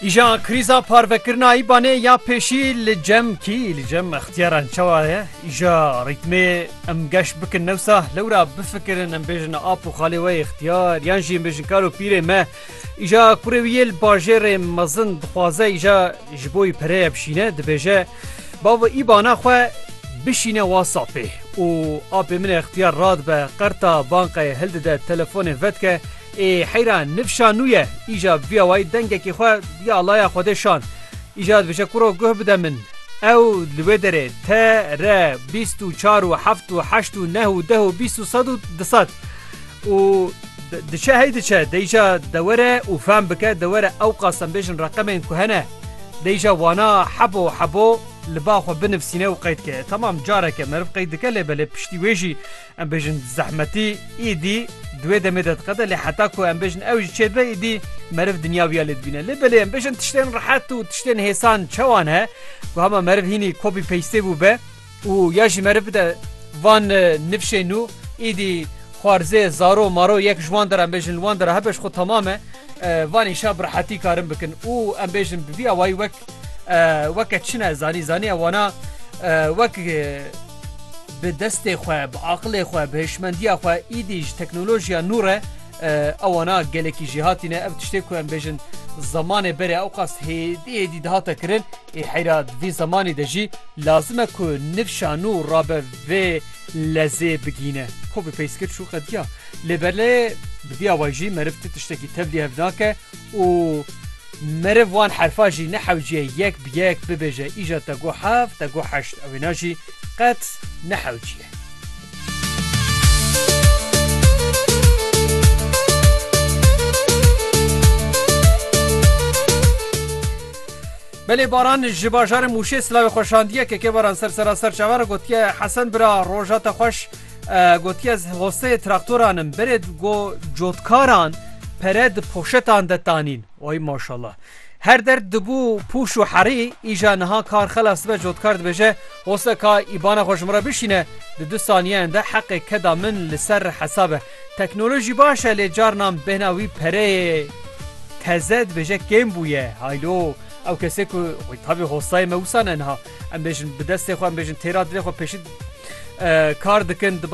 Îja krîza parvekirina îbanê ya pêşî li cem kî li cem ixtiyaran çawa ye îja rîtmê em geş bikin newsa lewra bifikirin em bêjin ap û xalê we ixtiyar yan jî bêjin kar û pîrê me îja kurê wî yê li bajêrê mezin dixwaze îja ji bo wî pereye bişîne dibêje bava îbana xwe bişîne wa sapê û apê min ixtiyar radibe qerta banqeyê hildide telefonê vedike Ê heyra nifşa nû ye. Îja bûya wayî dengekî xwe ya alaya Xwedê şand. Îja dibêje kuro guh bide min. Ew li wê derê te re bîst û çar û heft û heşt û neh û deh û bîst û sed û di sed û diçe hey diçe de îja de were û fehm bike de were ew qas em bêjin reqemên ku hene de îja wana hebo hebo li ba xwe binivsîne û qeyd ke. Temam careke meriv qeyd dike lê belê piştî wê jî Em bêjin zehmetî îdî di wê demê de diqede lê heta ku em bêjin ew jî çêdibe îdî meriv dinya wiya lê dibîne. Lê belê em bêjin tiştên rehet û tiştên hêsan çewan he ku hema meriv hînî kopî peystê bû be û ya jî meriv bide van nifşê nû îdî xwarzê zaro maro yek ji wan dera em bêjin li wan dera hebe ji xwe temam e van îşa bi rehetî karin bikin û em bêjin bi vî awayî wek weke çin e zanî zanî e wana wek Bi destê xwe, bi aqilê xwe, bi hişmendiya xwe îdî ji teknolojiya nû re ewana gelekî jî hatîne. Ev tiştê ku em bêjin zemanê berê ewqas hêdî hêdî dihata kirin ê heyra di vî zemanî de jî lazim e ku nifşa nû rabe vê lezê bigîne. Xwe bi peyskir çû qediya. Lê berlê bi vî awayî jî meriv ti tiştekî tevlî hev nake û Meriv wan herfa jî nehewciye yek bi yek bibêje îja te got heft, te got heşt ew wêna jî qet nehewciye. Belê Baran ji bajarê Mûşê silavê xweşandiye KK Baran ser sera serçava re gotiye Hesen bira roja te xweş. Gotiye ez hoseyê traktoran im berê go cotkaran pere di poşetan de tanîn. Oy maşallah. Her derd dibû pûş û herî îja niha kar xelas be cotkar dibêje hoseka îbana xwe ji min re bişîne di du saniyeyan de heqê keda min li ser re hesabe. Teknolojî baş e lê carinan bêhna wî pereyê teze dibêje kêm bûye. Haylo ew kesê ku tabî hoseyê me wisa ne niha. Em bêjin bi destê xwe em bêjin têra dilê xwe pêşî kar dikin diba